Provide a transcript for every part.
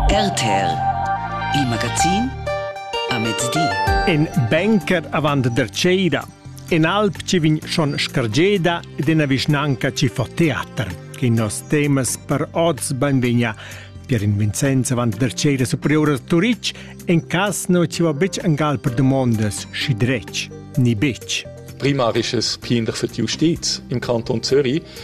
RTL Il magazin a mezdi In banker avant der Ceida In alp ci vegn schon scargeda ed ina vischnanca ci fa teater che nos temas per oz benvegna Pier in Vincenz avant der Ceida superior a Turitg en cas no ci va betg angal per domondas schi dretg ni betg Primarisches Kinder für die Justiz im Kanton Zürich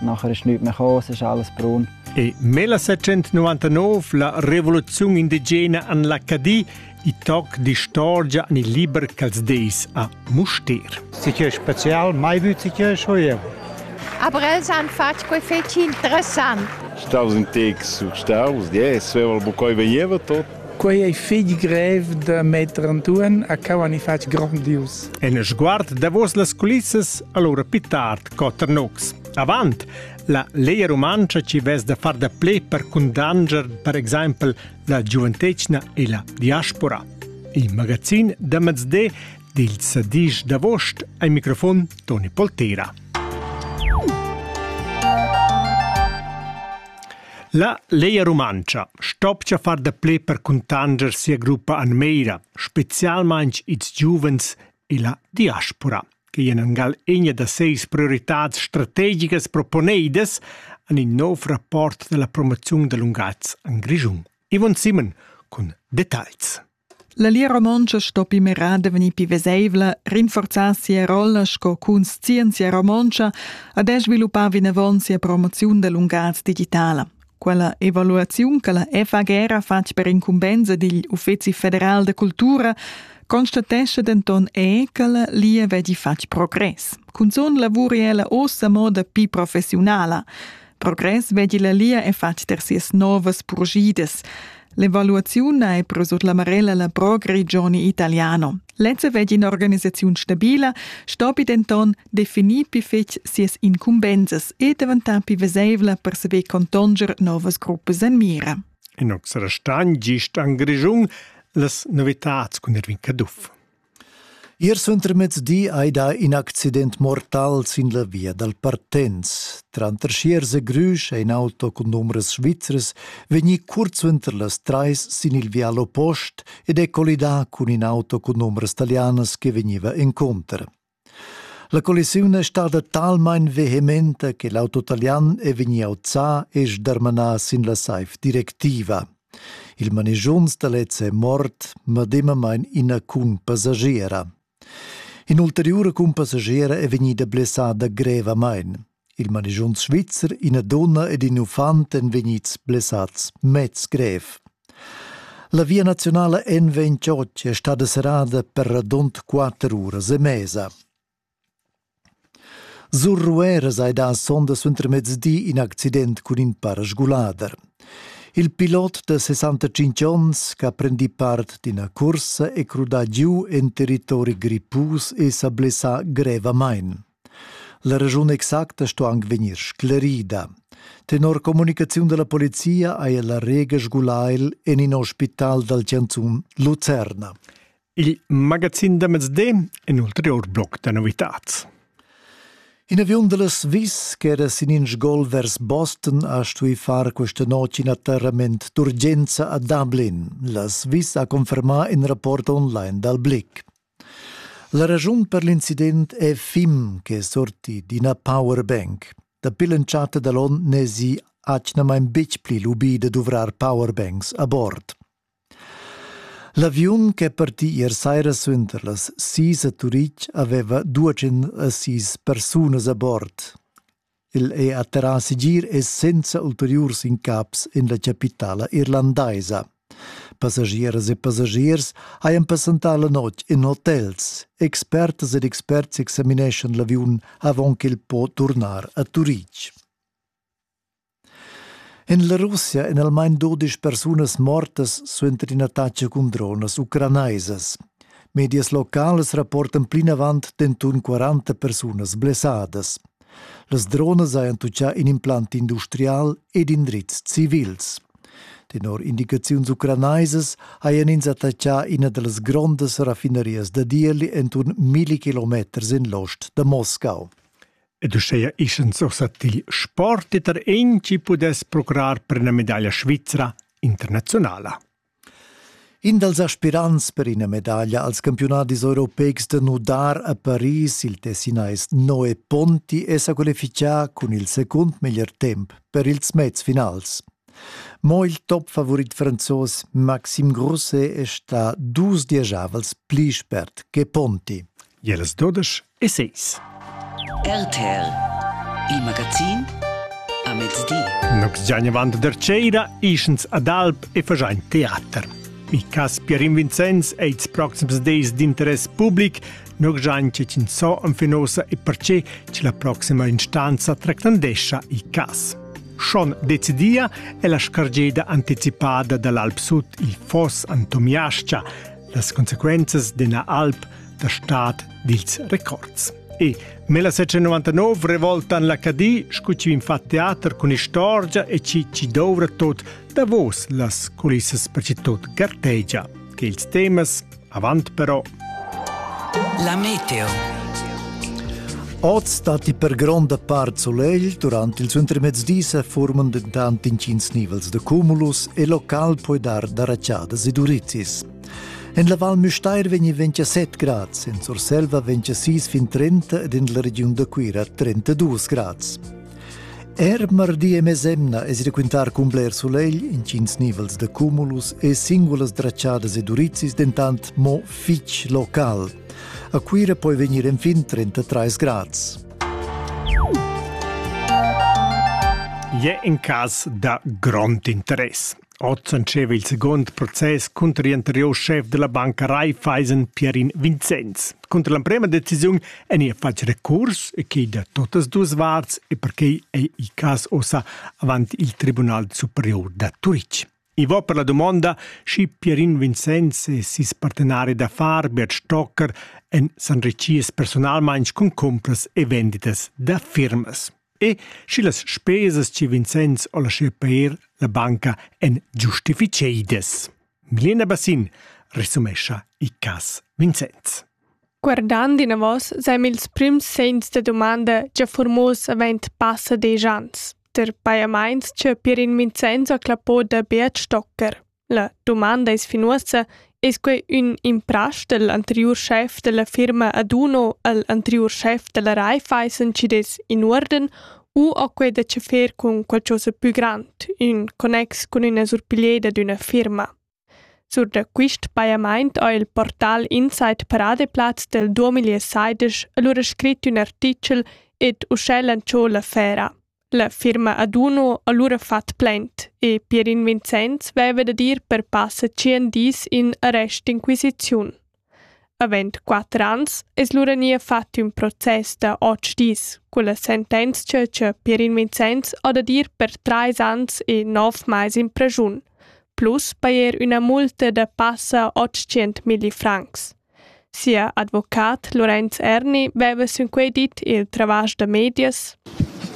Nachher ist nichts mehr gekommen, es ist alles braun. E 1799 la revoluzione indigena an l'Acadie i toc d'istorgia an il liber ch'als deis a Mustér. Si che special mai vüt si che schoievo. Aber els han fatg quei fetg interessant. Staus in tex staus, yes, avevo bucoi veniva tot. Quei ei fig grev da metter Antoine a cau ani fatg grandius. En sguard davos las culissas allora pittard Cotter Nux. Avant la Leia Rumantscha ci vess da far da ple per cundanger per exempel la giuventetgna e la diaspora. Il magazin da mezde dil sadish d'avost ai microfon Toni Poltera. La Leia Rumantscha stopcha far da ple per cuntanger sia gruppa Anmeira, specialmain ils giuvens e la diaspora. quei en angal egna da seis prioritads strategigas proponeidas en in nov rapport dalla promoziun da lungaz en Grischun. Ivon Simon cun details. La Lia Romontscha sto pi merada vegnir pi veseivla, rinforzar sia rolla sco cunscienzia romontscha ad sviluppar vinavon sia promoziun da lungas digitala. Quella evaluaziun che la FAG ha fatg per incumbensa digl Uffeci federal da cultura constatesce denton è che la lia vegli fatg progress. Cunzun lavur è ella ossa moda pi professionala. Progress vegli la lia è fatg ter sias novas purgidas. L'evaluaziun è però sut la marella la Pro Grigioni Italiano. Lezza vegli un'organisazione stabile, stopi denton definir più fetg sias incumbensas e diventare più vesevla per saver contanger novas gruppas en mira. In ox restagn gist en Grischun las novitats cun Erwin Caduff. Ier suentermezdi ei dà in accident mortal sin la via dal Partenz. Tranter Schiers e Grüsch è in auto cun numeras svizras vegnì curt suenter las trais sin il vial oppost ed è collidà cun in auto cun numeras talianas che vegniva encunter. La collisiun è stada talmain vehementa che l'auto talian è vegnì auzà e sdarmanà sin la saiv directiva. Il manigiunz da lez è mort, medemamain ina cunpassagiera. In'ulteriura cunpassagiera è vegnida blessada grevamain. Il manischun svizzer, ina dunna ed in uffant èn vegnids blessads mez grev. La via nazionala en vegn Ciocci è stada serrada per radund quatter uras e mesa. Sur Rueras hai dà sonda suentermezdi in accident cun in parasgulader. Il pilot da 65 onns che ha prendì part d'ina cursa è crudà giu en territori grippus e sa blessà grevamain. La regiun exacta sto anc vegnir sclerida. Tenor communicaziun dalla polizia haja la Rega sgulail en in ospital dal Chanzun Lucerna. Il magazin da mezdi in ulterior bloc da novitads. In aviun da la Swiss ch'era sin in sgol vers Boston ha stuì far questa notg in atterrament d'urgenza a Dublin. La Swiss ha confermà in rapport online dal Blick. La raschun per l'incident è Fim che sorti d'ina powerbank. Dapi l'entschatta da l'onn n'èsi atgnamain betg pli lubì da duvrar powerbanks a bord. L'aviun ch'è partì ier saira suenter las sis a Turitg aveva duagen a sis persunas a bord. El è atterrà segir e senza ulteriurs incaps en la capitala irlandaisa. Passagieras e passagiers hajan passentà la notg en hotels. Expertas ed experts examineschan l'aviun avant ch'el po turnar a Turitg. En la Russia èn almain dodisch persunas mortas suenter in'attacca cun dronas ucranaisas. Medias locales rapportan plinavant denton 40 persunas blessadas. Las dronas hajan tutgà in implant industrial ed indrizs civils. Tenor indicaziuns ucranaisas hajan ins attaccà ina da las grondas raffinarias da Dieli enturn milli kilometers en l'ost da Moscau. Ed uschea ischan sursat il sport e tar en chi pudess procurar per una medaglia svizra internazionala. In dals aspirants per ina medaglia als campiunadis europeics da nudar a Paris, il tessinais Noe Ponti, è sa qualifichà cun il secund meglier temp per ils mezfinals. Mo il topfavorit franzos Maxim Grosse è stà dus diesavals pli spert che Ponti. Jeles 12 Essays. RTL, il magazin a mezdi. Nox giagna avant der Ceira, ischens ad Alp e fagiain teater. Mi cas Pierin Vincenz è ils proxims days d'interess public, noi giain cicin so an finosa e perce che la proxima instanza tractandescia i cas. Schon decidia è la scargeda anticipada dall'Alp Sud il foss Antomiascia, las conseguenzas della Alp, der Staat dils records. E nella 699 revoltan la Cadi, scucciu in fa teater cun istorgia e ci ci dovrà tot davos las culissas per ci tot gartegia, che ils temas avant però. La meteo. Oz datti per gronda part solegl, durante il intermezdi se forman dentant intgins nivels de cumulus e local puoi dar da raciadas e durizis. En la Val Müstair vegni 27 grads, en Surselva 26 fin 30 ed en la regiun da Cuira 32 grads. Er mardi e mesemna es ir quintar cun bler sulegl, intgins nivels de cumulus e singulas dracciadas e durizis dentant mo fitg local. A Cuira poi vegnir enfin 33 grads. Je in cas da grond interess. Oz entscheiva il second process cunter gl'anteriur schef dalla banca Raiffeisen Pierin Vincenz. Cunter l'emprema decisiun ein ei fatg recurs e quei da totas duas varts e perquei ei il cass ossa avant il Tribunal superior da Turitg. I va per la domanda, schi Pierin Vincenz e ses partenari d'affar Bert Stocker en san reciers personalmein cun compras e venditas da firmas. E schi las spesas chi Vincenz ho laschieu peir la banca èn giustificheidas. Milena Bassin resumescha il cas Vincenz. Guardand inavos seim ils prims segns da dumanda già furmos avent passa desch ans, der pajamaints ch'eu Pirin Vincenz ho clappo da Beat Stocker. La dumanda es fin uossa, es quai ün imprasch dal anteriur schef da la firma Aduno al anteriur schef da la Raiffeisen chi'd es in uorden u ho quai da chefar cun qualchosa pü grand in connex cun üna surpiglieda d'üna firma? Sur da quist pajamaint ho il portal Insight Paradeplaz del 2016 alura scrit ün artichel ed uschè lantschò l'affera. La firma Aduno ha lura fat plaint e Pierin Vincenz veva dad ir per passa tschien dis in arrestinquisiziun. Avend quatter ans es lura nia fat ün process da otg dis culla sentenzia cha Pierin Vincenz ha dad ir per trais ans e nov mais in presiun, plus pajer üna multa da passa otschient milli francs. Sia advocat Lorenz Erni veva sinquei dit il travasch da medias.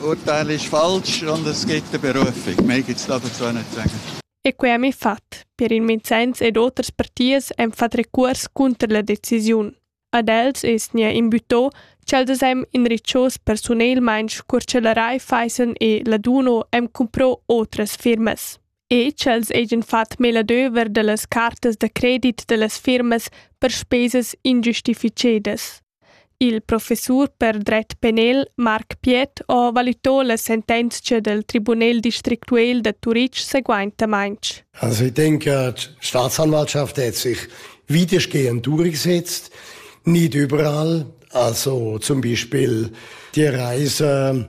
Urteil ist falsch und es geht der Berufung. Mehr gibt es dazu nicht zu sagen. E quei ha mi fat. Per il Vincenz ed oters partiers han fat recurs cunter la decisiun. Ad els es nia imbütto ch'els hem inriccios personelmaing cur ch'el rai faissen e laduno hem cumpro otras firmas. e ch'els hagien fatg meladöver dallas cartas da credit dallas firmas per spesas ingiustificedas. Il professur per dret penal Marc Piet ha valitò la sentenzia del Tribunel districtual da Turitg seguaintamaintg. Also ich denke, die Staatsanwaltschaft hat sich weitestgehend durchgesetzt, nicht überall. Also zum Beispiel die Reise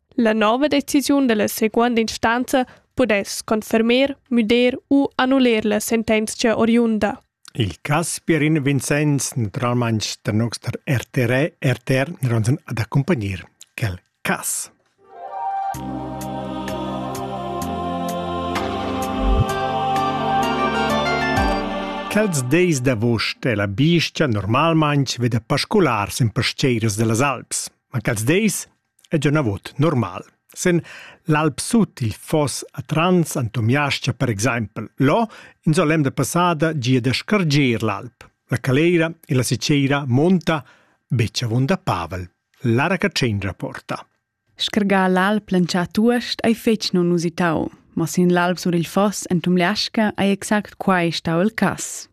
La nova decisiun dalla seconda instanza pudess confermer, müder u annuler la sentenzia oriunda. Il Casperin Vincenz, naturalmein der noster RTR, RTR, nironsen ad accompagnir quel cas. Quels deis d'avost è la bistia normalmain veda pascolar sen pasteiras dellas Alps, ma quels deis e già navot normal. Sen l'Alp Sut il foss a Trans Antomiascia per exempel, lo in so l'emda passada gia da scarger l'alp. La caleira e la siceira monta beccia vonda Pavel. Lara Catschendra porta. Schergà l'alp lancià tuost ei fetg non usitau, ma sin l'alp sur il foss en Tumliasca ei exact quai stau il cass.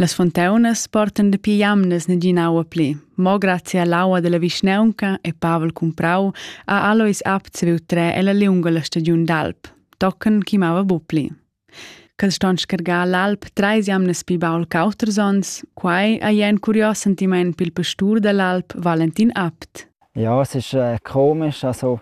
Las fonteunas portan dapi jamnas nagina aua pli. Mo grazie all'aua della vischnaunca e Pavel Cumprau ha Alois apt saviu trer ella liunga la stagiun d'alp, tochen chi mava bu pli. Cad ston scargar l'alp treis jamnas pi baul qu'auters ons, quai ha jen curios sentiment pil pastur dall'alp Valentin Abt. Ja, es ist äh, komisch, also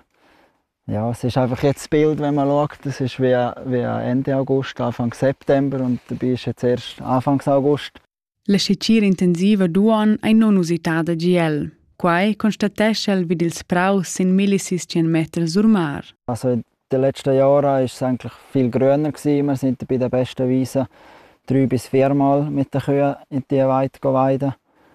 Ja, es ist einfach jetzt das Bild, wenn man schaut, das ist wie, wie Ende August, Anfang September und dabei ist jetzt erst Anfang August. La scicir intensiva duon ei non usitada GL. Quai constatescha el vid ils praus sin millisis 100 meter sur mar. Also in den letzten Jahren ist es eigentlich viel grüner gewesen. Wir sind bei den besten Wiesen drei bis viermal mit den Kühen in die Weide weiden.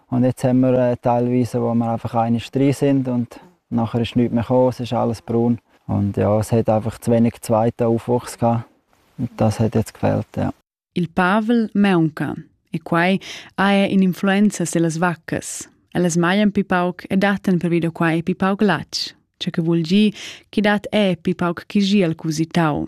Und jetzt haben wir teilweise, wo wir einfach eine drin sind und nachher ist nichts mehr gekommen, es ist alles braun. Und ja, es hat einfach zu wenig zweiten Aufwuchs gehabt. Und das hat jetzt gefehlt, ja. Il Pavel maunca e quai haja in'influenza sulle vacche. Elles smajan più pauc e dattan pervido quai più pauc latg, ciò che vuol dire che dat è più pauc chi gira al cusitau.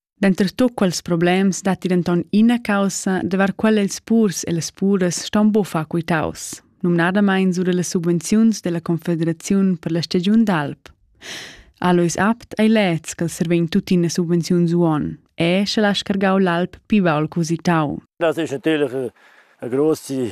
Denter tut quels problems datti denton ina caussa, davart quella ils purs e las puras ston buca quitaus, numnadamein sur las subvenziuns della Confederaziun per la stagiun d'alp. Alois Abt ei leds che servein tuttina subvenziuns uon, e sche la scargau l'alp pivaul cositau. Das ist natürlich eine große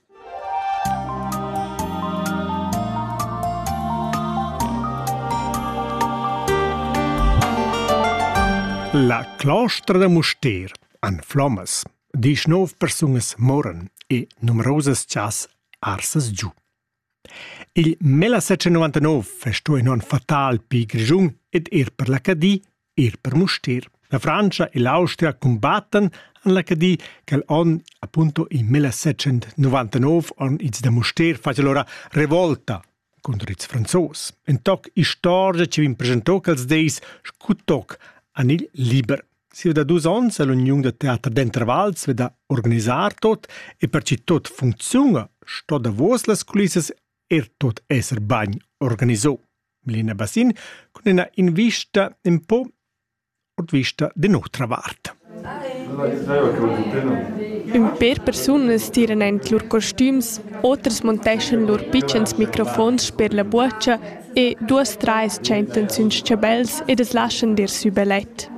La clostra da Mustér an Flommas disch nov persungas moran e numerosas chas arsas giu. Il 1999 festò in on fatal pi grigiun ed er per la Cadi Ir per Mustér. La Frantscha e l'Austria cumbattan en la Cadi quel onn appunto in 1799 on ils da Mustér facel ora revolta contro ils franzos. En toc istorgia ci vin presentò quels deis scu toc an il liber. Si da dus ons l'Union da Teater d'Intervals veda organisar tot e per ci tot funziunga sto davos las culissas er tot esser bagn organizò. Milena Bassin cun ina invista in po od vista de nutra vart. Ün per persunas tiran en lur costüms, otras monteschan lur pitschens microfons per la buocha e duas trais tschentan sün schabels ed as laschan dir sü belet.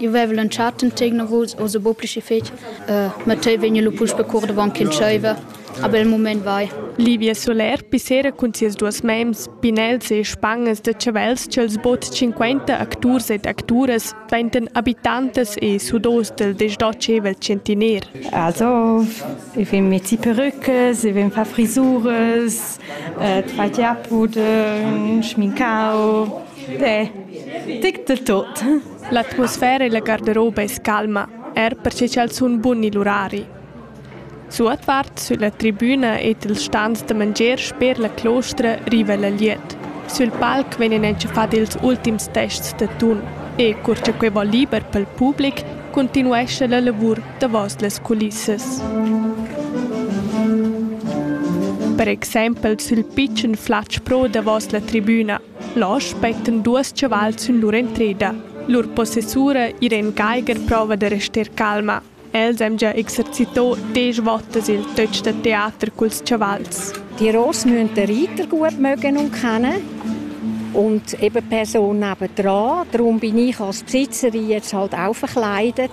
Eu veva lantschà tant tegnavuls, oz è bod pli schi fich. Uh, ma tei vegna lu puspe cur davon ch'entscheiva. A bel mument vai. Livia Soler pissera cun sias duas mems, pinels e spangas da chavels ch'els bod 50 acturs ed acturas dvaintan abitantas e sudos del desdotschevel centiner. Also, ich will mit Ziperückes, ich will far Frisuras, Tfatia puden schmincau de tic de tot. L'atmosfera e la garderoba es calma, er perche ch'els sun buni l'urari. Suotvart sülla tribüna ed il stand da mangier sper la clostra riva la liet. Sül palc vegnan entschafat ils ultims tests da tun e cur cha quei va liber pel public, continuescha la lavur davos las culissas. Per exempel sül pitschen flatsch pro davos la tribüna. Là spettan duos chavals in lur entreda. Lur possessura Irene Geiger prova da rester calma. Els han già exercitò desch votas il töch da teater culs chavals. Die Ross müssen den Reiter gut mögen und kennen und eben Person nebendran. Darum bin ich als Besitzerin jetzt halt auch verkleidet.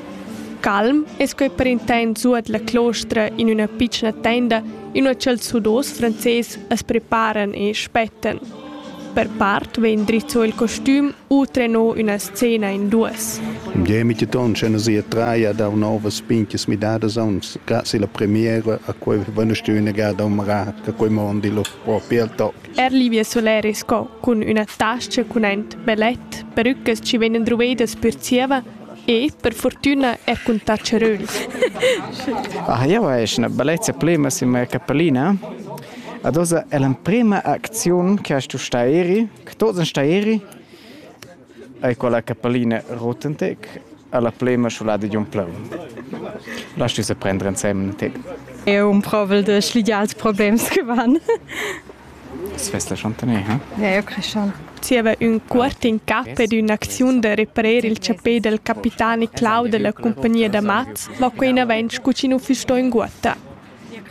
Calm es quei per intent suot la clostra in üna pitschna tenda, inua ch'els sudos frances as preparan e spettan. Per part vegn drizzo il costüm u trenò üna scena in duos. Im Demitetton c'en sia traia da novas pinches midadas aunz grazie alla premiera a quei vanestüna ga da marar che quei mondi lo propi al toc. Er Livia Soler es co cun üna tascha cun ent bellet, perucas chi vegnan druvedas per zieva E per fortüna er cun ta charöls. Ah, jau esch üna bellezza plema sin mia capellina. Ad oza è l'emprema acziun che hast tu sta eri, che tots en sta eri, ai quella capellina Rotentec, alla plema sciolada di un pleu. Lass du se prendere insieme, Tek. Eu un provel de schligiar els problems che van. Svess la chantaner, ha? Ja, eu creschan. Zieva ün cuort in cap ed ün'acziun da reprer il chapè del capitani Clau della compagnia da mats va quei inavant scu chi nu füss sto inguotta.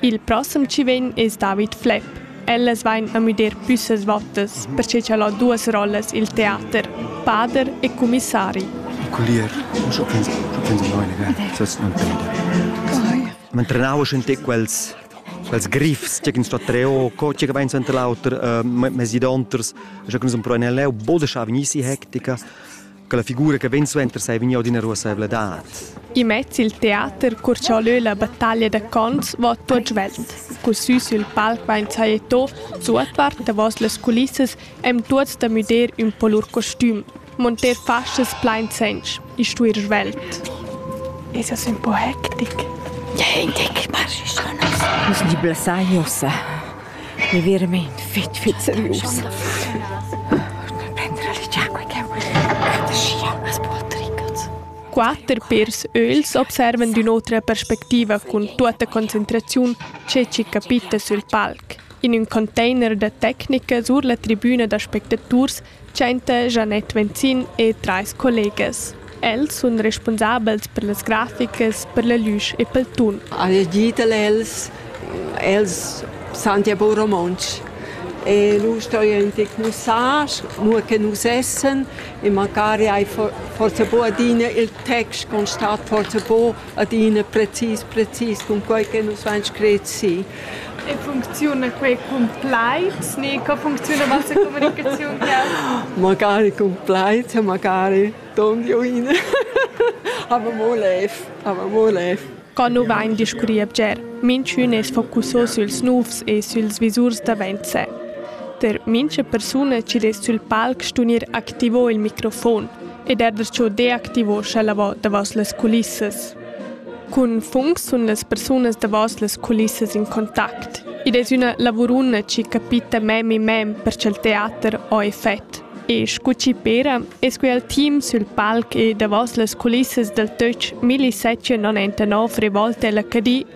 Il prossem chi vegn es David Flepp. Ellas vain a müder plüssas vottas, perche cha'l ho duos rollas i'l teater, pader e cumissari. Collier, giu pensa, giu pensa noi, ne? Sas non per me. Man trenava schon te quels quels griffs che ins sta treo co che vein suenter l'auter uh, mesi donters che nus empruan leu bodescha vegnissi hectica che la figura che vegn suenter sei vegniu d'ina ruasseivladad i mezzi il teater cur cha leu la battaglia da cons va tuot svelt cu sü sul palc vain sajeto suotvart davos las culissas em tuots da müder ün po lur costüm Monter faschas plain sench e stuer svelt. Es es ün po hectic. Ja, hectic, marsch schon aus. Sni blesagnosa. Mi verament fit, fit seriosa. Prendere l'acqua che Quatter pairs öls observan d'ün'otra perspectiva cun tuotta concentraziun che chi capita sül palc. In ün container da tecnica sur la tribüna da spectaturs Tschenta Janette Venzin e trais collegas. Els sun respunsabels per las graficas, per la lüsch e pel tun. Han digital els, els santi a bon romontsch. E lur storia ün tec mussar, nur che nus essen e macari hai forsa bo adina il text constat forsa bo adina precis precis cun quei che nus vain scret si. E funcziuna quei cun plaid ni co funcziuna vossa communicaziun causa? Magari cun plaid, magari don join. aber mo lev, aber mo lev. Co nu vain discurri a bger, minchün es focusso süls nouvs e süls visurs davent se. Per mincha persuna chi dess sül palc stunir activo il microfon ed er der ciò deactivo scha lavò davos las culissas. Cun funs sun las persunas davos las culissas in contact. Id es üna lavuruna chi capita mem mem per cha'l teater ho effet. E scu chi pera es que al team sül palc e davos las culissas dal töch 1079 Revolte l'HD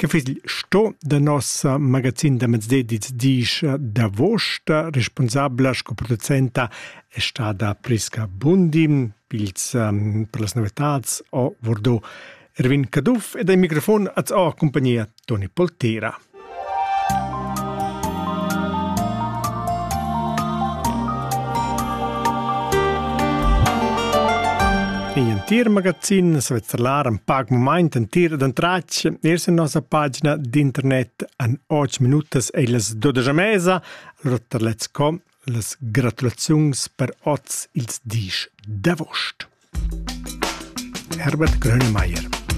Che fiss il sto da nossa magazin da mezdedis disch d'avuost? Responsabla sco producenta è stada Prisca Bundi. Pils per las novetats ho Vordot Erwin Caduff ed ai microfon az ho compagnia Toni Poltera. In entir magazin svizzer l'ar in pac mumaint entir d'en tratg ers in nossa pagina d'internet an 8 minutas e las 12 mesa, rotterlets.com, las gratulaziuns per oz ils dis d'avost. Herbert Grönemeyer